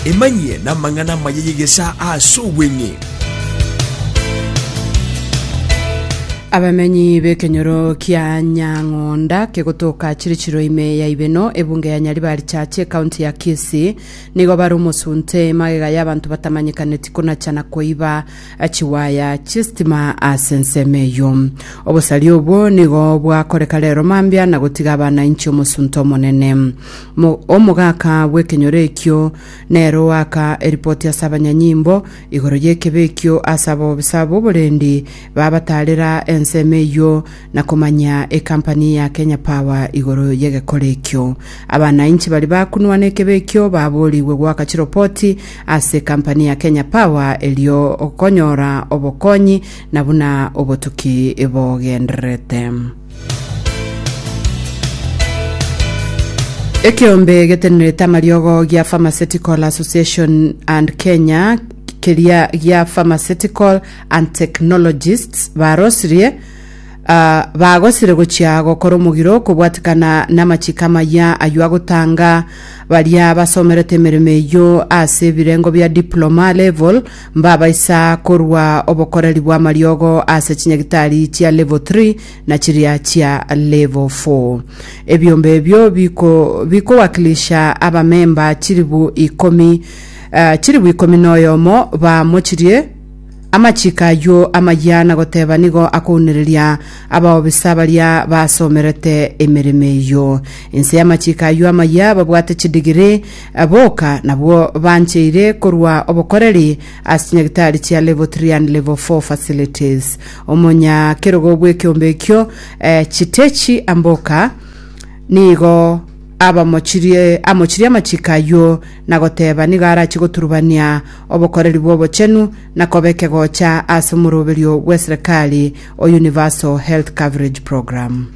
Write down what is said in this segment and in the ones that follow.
Emanyie namang'ana amaya y'egesaa aase obweng'e. Abamenyi b'ekenyoro kia Nyang'onda kegotoka chire chiro ime ya Ibeno, ebunge ya Nyaribari Church, ekaunti ya Kisii, nigo bare omosunte magega y'abanto batamanyekaneti konacha na koiba chiwaya chi'esitima ase ensemo eyio. Obosaria obwo nigo bwakoreka rero mambia na gotiga abana inche omosunte omonene. Mo, omogaka bw'ekenyoro ekio nere oaka eripoti ase abanyanyimbo igoro y'ekebe ekio ase abobisa b'oborendi babataarera ensemo eyio na komanyia ekampani ya Kenya Power igoro y'egekore ekio. Abanainchi baria bakunwa n'ekebe ekio baboorigwe goaka chiropoti ase ekampani ya Kenya Power erio okonyora obokonyi na buna obotuki bogendererete. Ekeombe getenerete amariogo gia Pharmaceutical Association and Kenya keria gia Pharmaceutical and Technologists barosirie ah, bagosire gochia gokora omogiro kobwatikana n'amachiko amaya aywo agotanga baria basomerete emeremo eyio ase ebirengo bia diploma level Mbabaisa korwa obokoreri bw'amariogo ase chinyagitari chia level 3 na chiria chia level 4. Ebiombe ebio biko- bikowakilisha abamemba chilifu ikomi eh, chilifu ikomi na oyomo bamochirie amachiko ayio amayia na goteba nigo akounereria abaobisa baria basomerete emeremo eyio. Inse y'amachiko ayio amayia babwate chidigiri Boka nabwo bancheire korwa obokoreri ase chinyagitari chia Level Three and Level Four facilities. Omonya kerogo bw'ekeombe ekio, eh, Chitechi Amboka, nigo abamochirie amochirie amachiko ayio na goteba nigo arachie goturubania obokoreri bw'obochenu na koba ekegocha ase omoroberio bw'eserekari o Universal Health Coverage Program.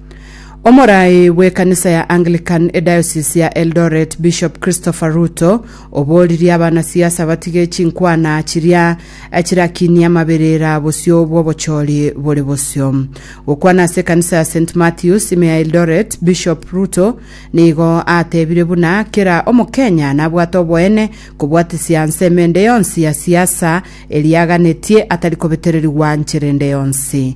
Omorai bw'ekanisa ya Anglican ediocese ya Eldoret Bishop Christopher Ruto oboririe abanasiasa batige chinkwana chiria chirakinia amaberera bosio bw'obochori bore bosio. Gokwana ase ekanisa ya St Matthews ime ya Eldoret, Bishop Ruto nigo atebire buna kera omokenya nabwate oboene kobwatisia nse emende yonsi ya siasa eria aganetie atari kobetererigwa nchera ende yonsi.